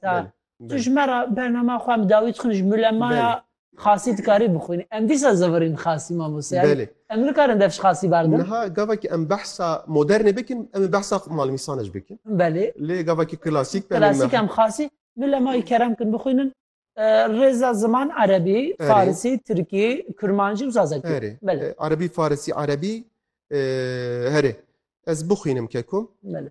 Belê. Tu ji me re bernama xwe em dawî dixwîn ji mulemaya xasî dikarî bixwînî. Em dîsa zevirîn xasî mamoste. Belê. Em nikarin dev ji xasî berdin. Niha gavekî em behsa modernê bikin, em ê behsa malmîsane jî bikin. Belê. Lê gavekî klasîk be. Klasîk em xasî mulemayî kerem kin bixwînin. Rêza ziman erebî, farisî, tirkî, kurmancî û zazakî. Erê. Belê. Erebî, farisî, erebî herê. Ez bixwînim kekum. Belê.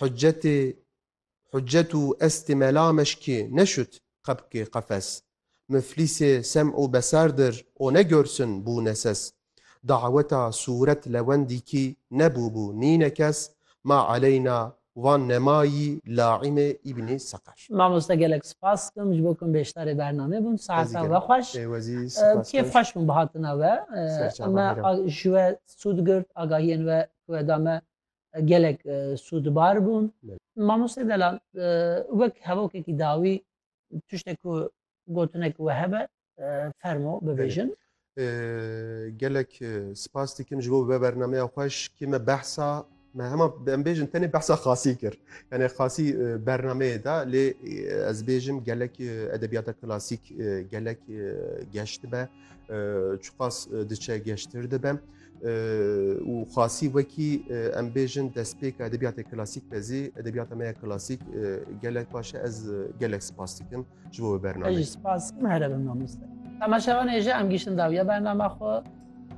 Hucetê Hucet û estê mela meşkê neşut qebkê qefes. Muflîsê sem û besar dir o ne görsün bû neses. Daweta sûret lewendî kî nebûbû nîne kes ma eleyna wan nemayî laîmê Îbnî Seqer. Mamoste gelek spas dikim ji bo ku bêşdarê bernamê bûn. Saetan ve xweş. Kêf xweş bûn bi hatina we. Me ji we sûd girt, agahiyên we ku we da me gelek sûdbar bûn. Mamoste Delal wek hevokekî dawî tiştek ku gotinek we hebe fermo bibêjin. Gelek spas dikim ji bo bi bernameya xweş kê me behsa me hema em bêjin tenê behsa xasî kir. Yani xasî bernameyê da lê ez bêjim gelek edebiyata klasîk gelek geştibe çiqas diçe geştir dibe. û xasî wekî em bêjin destpêka edebiyatê klasîk de zî edebiyata me ya klasîk gelek baş e ez gelek spas dikim ji bo bername spas here bin mamoste Temaşevanê ji em giştin dawiya bernama xwe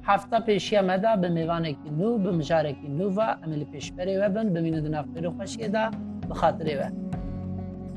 hefta pêşiya me da bi mêvanekî nû bi mijarekî nû ve em li pêşberê we bin bimîne di navxêrê xweşiyê de bi xatirê we.